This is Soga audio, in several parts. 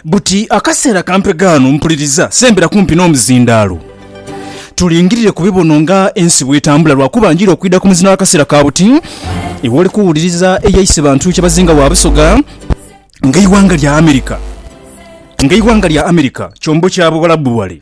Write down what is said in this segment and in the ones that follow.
Buti akaseera kampega ghano mpuliriza sembera kumpi n'omuzindaalo. Tulingirire ku bibono nga ensi bw'etambula lwakuba njira okwidha ku muzina w'akaseera ka buti ewali kuwuliriza eyaise bantu kyebazinga wa Busoga ng'eighanga lya America ng'eighanga lya America kyombo kya Buwalabu wale.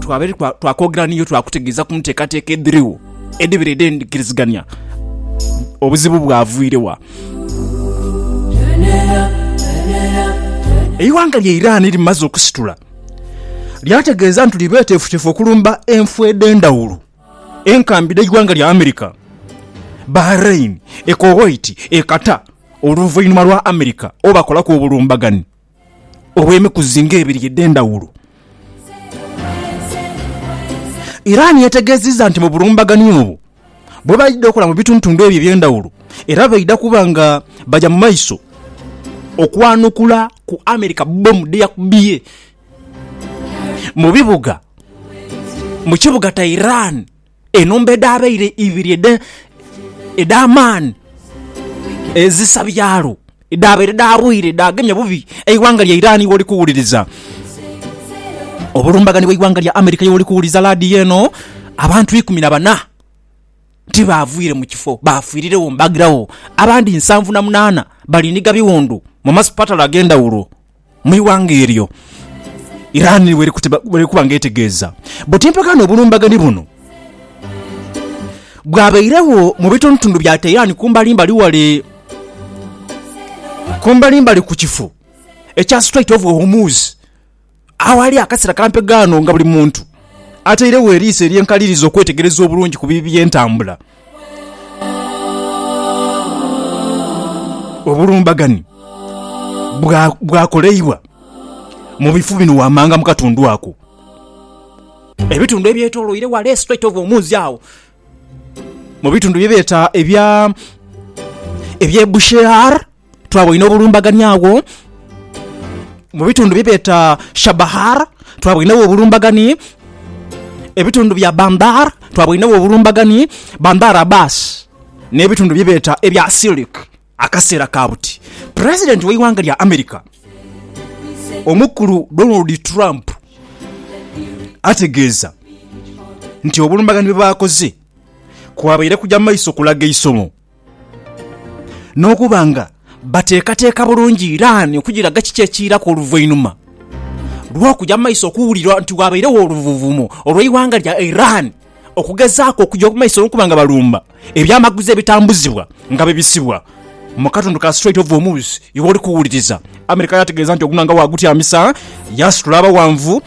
Twabaire twakwogera niiyo twakutegeeza ku nteekateeka edhirigho edhibaire edh'endhikirizigania. Obuzibu bwavwire wa? Eighanga lya Iran limaze okusitula lyategeeza nti liri beeteefuteefu okulumba enfo edh'endhawulo enkambi dh'eighanga lya America, Bahrain, e Kuwait, e Qatar oluvainhuma lwa America obakolaku obulumbaganhi. olw'emikuzi ng'ebiri edh'endhawulo. Iran yategeezezza nti mu bulumbaganyi obwo bwo baidha okola mu bitundutundu ebyo eby'endhawulo era baidha kuba nga baja mu maiso okwanukula ku America bbomu dheyakubye mu kibuga Tehran. enhumba edhabaire ibiri edh'amaani ezisa byalo, edhabaire dhaabwire dhaagemya bubi eighanga lya Iran woli kuwuliriza, obulumbaganyi bw'eighanga lya America ye woli kuwuliriza laadiyo eno, abantu ikumi na bana ti baavwire mu kifo, baafiiriregho mbaagiragho. Abandi nsanvu na munaana bali ni gha biwundu mu masipatala ag'endhawulo. mu ighanga eryo Iran ni bw'eri kuba nga etegeeza buti empaka n'obulumbaganhi buno bwabairegho mu bitundutundu bya Tehran kumbalimbali ghale kumbalimbali ku kifo ekya Strait of Hormuz aghali akasira kampe ghano nga buli muntu atairegho eriiso ery'enkaliriza okwetegereza obulungi ku bibi by'entambula. Obulumbaganhi bwakoleibwa mu bifu bino wammanga mu katundu ako. Ebitundu ebyetoloire ghale Strait of Hormuz agho, mu bitundu bye beeta ebya, eby'e Bushehr, Twaboine obulumbaganhi agho mu bitundu bye beeta Chabahar, twaboinegho obulumbaganhi ebitundu bya Bandar, twaboinegho obulumbaganhi Bandar Abbas nhe bitundu bye beeta ebya Silik akaseera ka buti. President ghe eighanga lya America omukulu Donald Trump ategeeza nti obulumbaganhi bwe baakoze kwabaire kugya maiso kulaga eisomo. N'okuba nga bateekateeka bulungi Iran okugiraga kiki ekiiraku oluvainhuma lw'okuja mu maiso okuwulirwa nti waabairegho oluvuvumo olw'eighanga lya Iran okugezaaku okuja mu maiso n'okuba nga balumba ebyamaguzi ebitambuzibwa nga bibisibwa mu katundu ka Strait of Hormuz igh'oli kuwuliriza America yaategeeza nti ogunhanga waagutyamisa yaasitula abaghanvu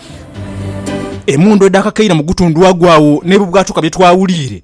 emundu edhaakakeire mu gutundhu agwo agho n'ebibwatuka bye twawuliire.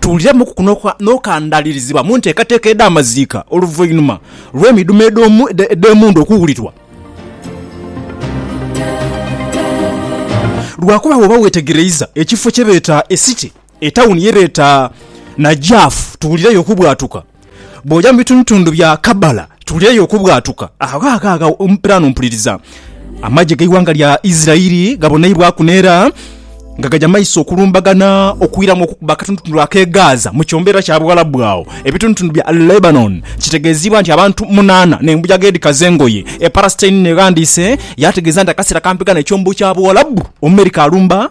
Tuwuliremuku ku n'okandalirizibwa mu nteekateeka edh'amaziika oluvainuma lw'emidhumo edh'emundhu okuwulirwa. Lwakuba bw'oba weetegereiza ekifo kye beeta Esite, etawuni ye beeta Najaf, tuwulireyo okubwatuka. Bw'oja mu bitundutundu bya Kabala tuli eyo okubwatuka. Agho agho agho mpiraano mpuliriza amagye g'eighanga lya Isiraeli gaboneibwaku n'era nga gaja maiso okulumbagana okwiramu okukuba akatundutundu ak'e Gaza mu kyombeera kya Buwalabu agho ebitundutundu bya Lebanon. Kitegeeziibwa nti abantu munaana n'embuyaga edhikaza engoye e Palestine n'eghandiise yaategeeza nti akaseera kampi ghano ekyombo kya Buwalabu Omumerika alumba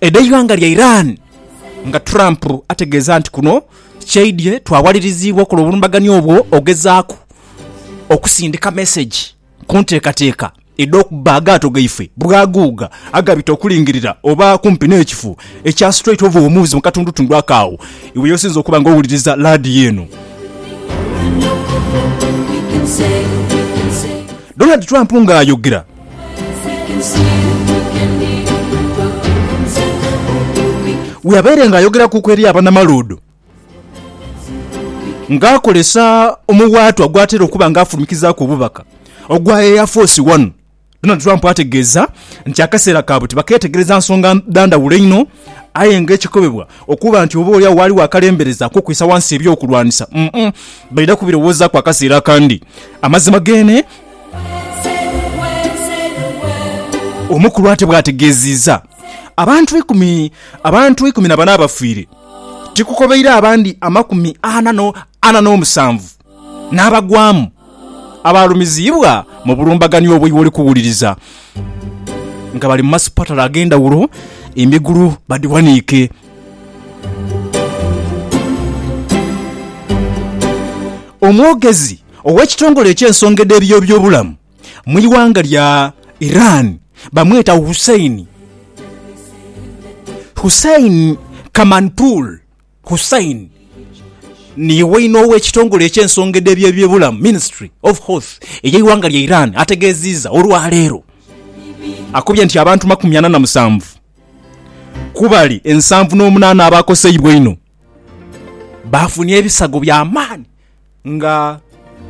edh'eighanga lya Iran nga Trump ategeeza nti kuno kyaidhye twawaliriziibwa okola obulumbaganio obwo ogezaaku okusindika mesegi ku nteekateeka edh'okubba agaato gaife bwaguuga agabita okulingirira oba kumpi n'ekifo ekya Strait of Hormuz mu katundutundu ako agho iwe y'osinze okuba nga owuliriza laadiyo eno. Donald Trump ng'ayogera. Weabaire nga ayogera kuku eri abana maluudho nga akolesa omuwaatwa ogwatera okuba nga afulumikizaaku obubaka ogwa Air Force One, Donald Trump ategeeza nti akaseera kaabwe tibak'etegereza nsonga dha ndhawulo einho aye nga ekikobebwa okuba nti oba olyawo ghaligho akalembereza ak'okwisa ghansi eby'okulwanisa baidha kubirowoozaku akaseera akandi. Amazima geene. Omukulu ate bwategeziiza abantu eikumi abantu eikumi na bana abafiire tikukobeire abandi amakumi ana n'omusanvu n'abagwamu abaalumiziibwa mu bulumbaganio obwo iwe oli kuwuliriza nga bali mu masipatala ag'endhawulo emigulu badhiwaniike. Omwogezi. Ow'ekitongole eky'ensonga edh'ebiyobyobulamu mu ighanga lya Iran bamweta Hussein Hussein Kamanpour Hussein ni waine ow'ekitongole eky'ensonga edh'ebiyobyobulamu, Ministry of Health, ey'eighanga lya Iran ategeziiza olwaleero akobye nti abantu makumi ana na musanvu ku bali ensanvu n'omunaana abaakoseibwa einho. Baafunye ebisago bya maani nga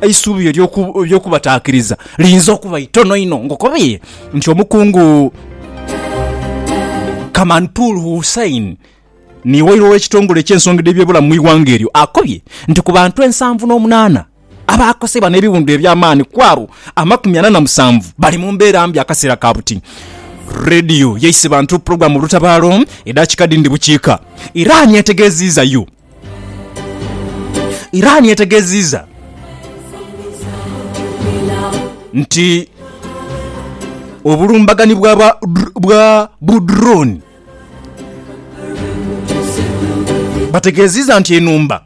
eisubi ery'okubataakiriza liyinza okuba itono inho. Ngokobie nti Omukungu Kamantul Hussain ni waire ow'ekitongole eky'ensonga edh'ebyobulamu mu ighanga eryo akobye nti ku bantu ensanvu n'omunaana Abaakosebwa n'ebiwundu eby'amaani ku abo amakumi ana na musanvu bali mu mbeera mbi akaseera ka buti. Radio yaise bantu pulogulaamu olutabaalo edhaakika dhindi bukiika. Iran etegeeziiza U. Iran etegeeziiza nti obulumbaganyi bwa bu drone bategeeziiza nti enhumba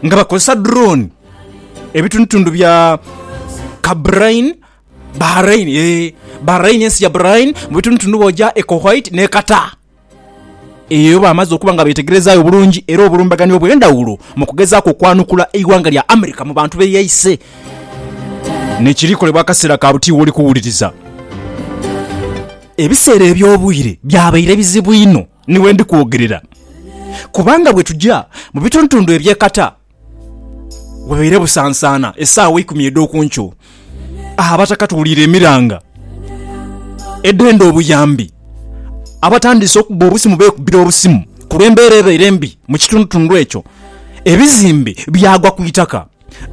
nga bakozesa drone, ebitundutundu bya Kabrain, Bahrain, ee, Bahrain, ensi ya Bahrain, mu bitundutundu bw'oja e Kuwait n'e Qatar. Eyo bamaze okuba nga beetegerezaayo bulungi era obulumbaganyi obw'endhawulo mu kugezaaku okwanukula eighanga lya America mu bantu be yaise n'ekiri kolebwa akaseera ka buti w'oli kuwuliriza. Ebiseera eby'obwire byabaire bizibu inho Ni we ndi kwogerera, kubanga bwe tuja mu bitundutundu eby'e kata, wabaire busansaana esaawa eikumi edh'oku nkyo, agho Abataka tuwuliire emiranga edhenda obuyambi, abatandiise okubba obusimu beekubbira obusimu ku lw'embeera ebaire embi mu kitundutundu ekyo, ebizimbe byagwa ku itaka.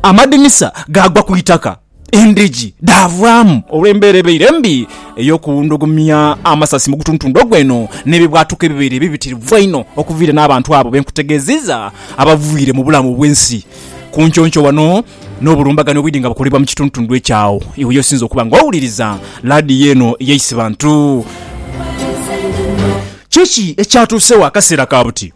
Amadinisa gaagwa ku itaka, endhigi dhaavaamu olw'embeera ebaire embi ey'okuwundhugumia amasasi mu gutuntundu ogwo eno n'ebibwatuka ebibaire ebibitirivu einho okuviira n'abantu abo be nkutegeezizza abaviire mu bulamu bw'ensi ku nconco wano n'obulumbaganhi obwidhi nga bukolebwa mu kituntundu ekyo agho iwe y'osinze okuba nga owuliriza laadiyo eno ey'Eisibantu. Kiki ekyatuusewo akaseera ka buti?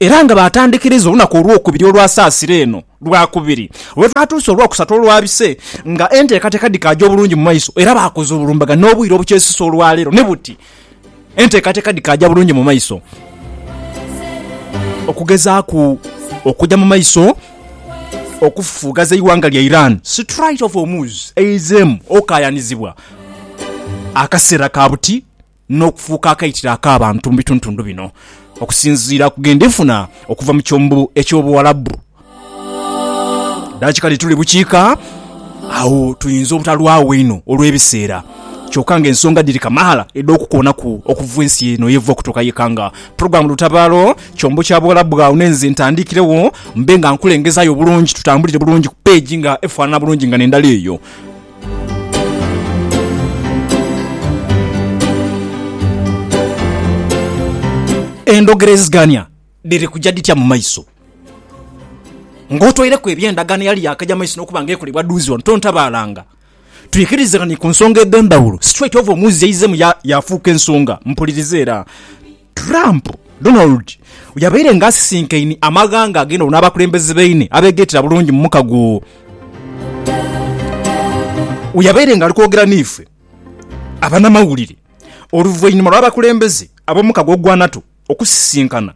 Era nga baatandhikiriza olunaku olwokubiri olwa saasira eno lwa kubiri lwe twatuusa olwokusatu olwa bise nga enteekateeka dhikaaja obulungi mu maiso era baakoze obulumbaganhe obwire obukyesisa olwa leero ni buti enteekateeka dhikaaja bulungi mu maiso okugezaaku okuja mu maiso okufufugaza eighanga lya Iran. Strait of Hormuz eizeemu okaayanizibwa akaseera ka buti. n'okufuuka akaitiro ak'abantu mu bitundutundu bino okusinziira ku gendi nfuna okuva mu kyombo eky'Obuwarabu. Daki kati tuli bukiika agho tuyinza obutalwagho inho olw'ebiseera, kyoka nga ensonga dhiri kamaala edh'okukoonaku okuva ensi eno yeva okutuuka yeka nga Program Lutabaalo kyombo kya Buwarabu agho n'enze ntandiikiregho mbe nga nkulengezaayo bulungi tutambulire bulungi ku page nga efaanana bulungi nga n'endala eyo. Endhogerezigania dhiri kuja dhitya mu maiso? Ng'otoireku eby'endagaano eyali yaakaja mu maiso n'okuba nga ekolebwa dhuuzi wano, tontabaalanga. Twikirizeganie ku nsonga edh'endhawulo. Situlaiti ova omuuzi yaizemu yaafuuka ensonga. Mpuliriza era. Trump, Donald yabaire nga asisinkaine amaghanga ag'endhaghulo n'abakulembeze baine abeegaitira bulungi mu muka gwo we yabaire nga ali kwogera n'ife abanamawulire oluvainhuma lw'abakulembeze ab'omuka gw'ogwa NATO okusisinkana.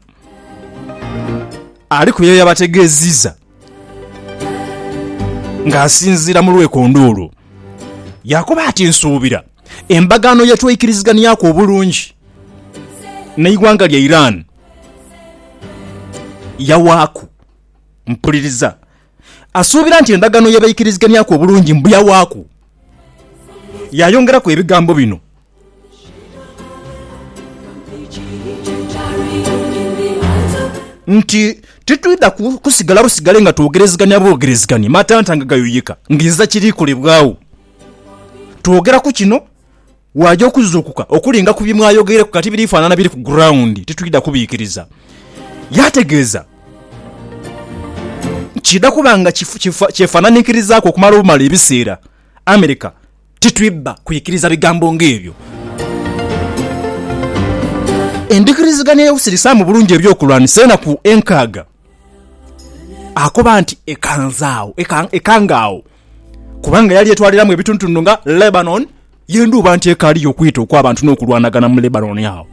Aliku byabaire yabategeeziiza. Ng'asinziira mu lwekondoolo, yaakoba ati, Nsuubira endagaano ye tweikirizighanhiaku obulungi n'eighanga lya Iran yawaaku. Mpuliriza. Asuubira nti endagaano ye beikirizighanhiaku obulungi mbu yawaaku. Yaayongeraku ebigambo bino. Nti titwidha kusigala busigale nga twogerezegania bwogerezegania matanta nga gayuyika ng'inziza kiri kolebwagho. Twogera ku kino, waaja okuzuukuka okulinga ku bye mwayogeireku kati biri faanana biri ku guraundi, titwidha kubiikiriza. Yaategeeza nti kiidha kuba nga kyefaananikirizaku okumala obumala ebiseera America Titwidha kwikiriza bigambo ng'ebyo. Endhikiriziganya y'okusirisaamu obulungi eby'okulwanisa enaku enkaaga, akoba nti ekanze agho, ekanga agho, kubanga yali etwaliramu ebitundutundu nga Lebanon y'endhuba nti ekaaliyo okwita okw'abantu n'okulwanagana mu Lebanon agho.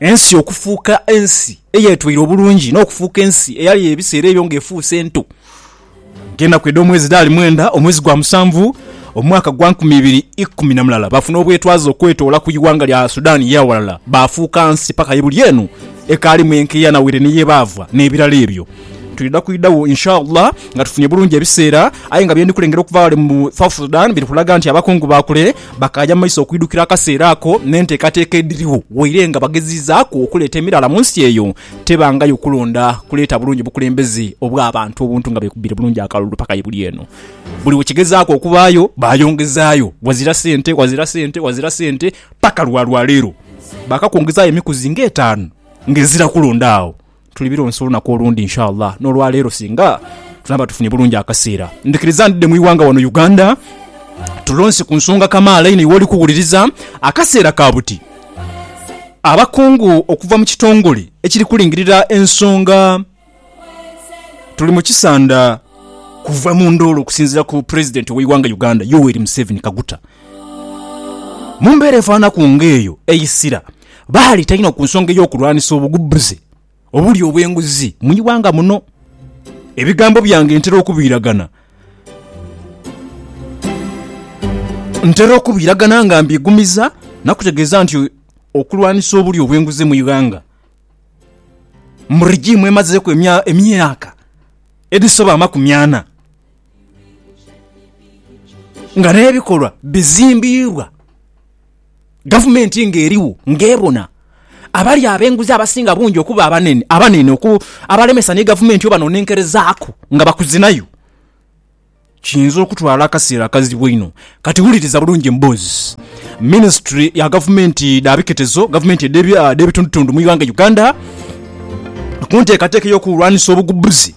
Ensi okufuuka ensi eyeetweire obulungi n'okufuuka ensi eyali ebiseera ebyo ng'efuuse ento. Ng'enaku edh'omwezi dhaali mwenda, omwezi gwa musanvu, omwaka gwa nkumi ibiri ikumi na mulala, baafuna obwetwaze okwetoola ku ighanga lya Sudan ye aghalala, baafuuka nsi paka ye buli eno ekaalimu enkeya na waire ni ye baava, n'ebirala ebyo. Twidha kwidhagho Inshallah nga tufunye bulungi ebiseera, aye nga bye ndi kulengera okuva ghale mu South Sudan biri kulaga nti abakungu ba kule Bakaaja mu maiso okwidhukira akaseera ako n'enteekateeka edhirigho. Waire nga bagezizaaku okuleeta emiraala mu nsi eyo, tebangayo kulonda kuleeta bulungi bukulembeze obw'abantu obuntu nga beekubbire bulungi akalulu paka ye buli eno. Buli we kigezaaku okubaayo, baayongezaayo wazira sente, wazira sente, wazira sente, paka lwa lwaleero baakakwongezaayo emikuzi ng'etaanu ng'ezira kulonda agho. Tuli bironsa olunaku olundi inshallah n'olwaleero singa tunaaba tufunye bulungi akaseera ndhikiriza ndidhe mu ighanga wano Uganda tulonse ku nsonga kamaala inho iwe oli kuwuliriza. Akaseera ka buti abakungu okuva mu kitongole ekiri kulingirira ensonga Tuli mu kisanda kuva mu ndoolo okusinziira ku Pulezidenti ow'eighanga Uganda Yoweri Museveni Kaguta mu mbeera efaananaku ng'eyo eisira. baaleeta inho ku nsonga ey'okulwanisa obugubbuze obuli obw'enguzi mu ighanga muno. Ebigambo byange ntera okubiiragana. Ntera okubiiragana nga mbiigumiza na kutegeeza nti okulwanisa obuli obw'enguzi mu ighanga mu rigiimu emazeeku emyaka edhisoba amakumi ana nga n'ebikolwa bizimbiibwa gavumenti ng'eriwo ng'ebona abali ab'enguzi abasinga bungi okuba abanene abanene oku abalemesa ni gavumenti obanonenkerezaaku nga bakuzinayo, kiyinza okutwala akaseera akazibu einho. Kati wuliriza bulungi emboozi minisitule ya gavumenti dha biketezo, gavumenti edh'ebitundutundu mu ighanga Uganda ku nteekateeka ey'okulwanisa obugubbuzi.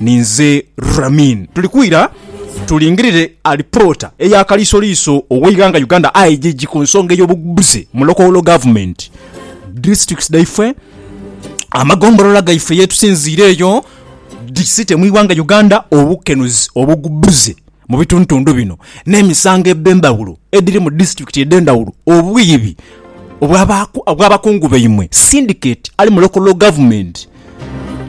Ninze Ramin. Tuli kwira tulingirire alipoota eya kaliisoliiso ow'eighanga Uganda, IGG, ku nsonga ey'obugubuzi mu local government, districts, dhaifwe, amagombolola gaife yetusinziira eyo, dhi city mu ighanga Uganda, obukenuzi, obugubuzi. Mu bitundutundu bino n'emisango edh'endhawulo edhiri mu disiturikiti edh'endhawulo, obwiibi obw'abakungu baimwe, sindiketi ali mu lokolo gavumenti,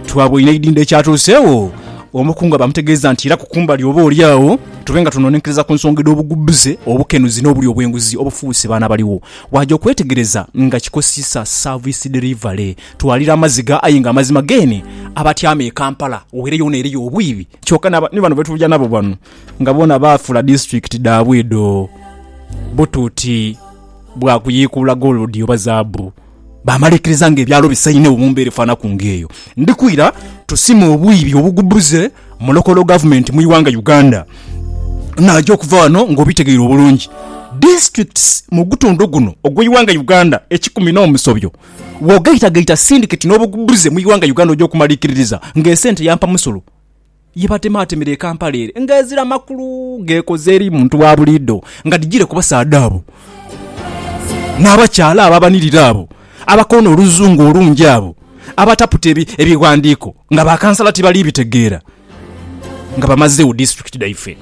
twabweinha eidhindho ekyatuuseegho. Omukungu aba amutegeeza nti iraku kumbali oba oli agho tube nga tunoonenkereza ku nsonga edh'obugudhuze, obukenuzi n'obulyo obw'enguzi obufuuse baana baligho. Waaja okwetegereza nga kikosisa service delivery. Twalira amaziga aye nga amazima geene abatyaama e Kampala weere yoona eriyo obwiibi. Kyoka na ba, ni bano betuja nabo bano nga bona baafula district dhaabwe edho butuuti bwa kuyiikuula gold oba zaabu, baamala ikiriza nga ebyalo bisainhewo mu mbeera efaanaku nga eyo. Ndi kwira tusime obwiibi obugubuze mu local government mu ighanga Uganda. Naaja okuva ghano nga obitegeire obulungi. Districts mu gutundhu guno ogw'eighanga Uganda ekikumi n'omusobyo, Bw'ogaitagaita sindiketi n'obugubuzi mu ighanga Uganda oja okumalikiririza nga esente ya mpamusolo ye batemaatemera e Kampala ere nga ezira makulu geekoze eri muntu wa buliidho nga dhijire ku basaadha abo n'abakyaala abo abanirira abo abakoona oluzungu olungi abo abataputa ebighandiiko nga ba kansala tibali bitegeera nga bamazegho disiturikiti dhaife.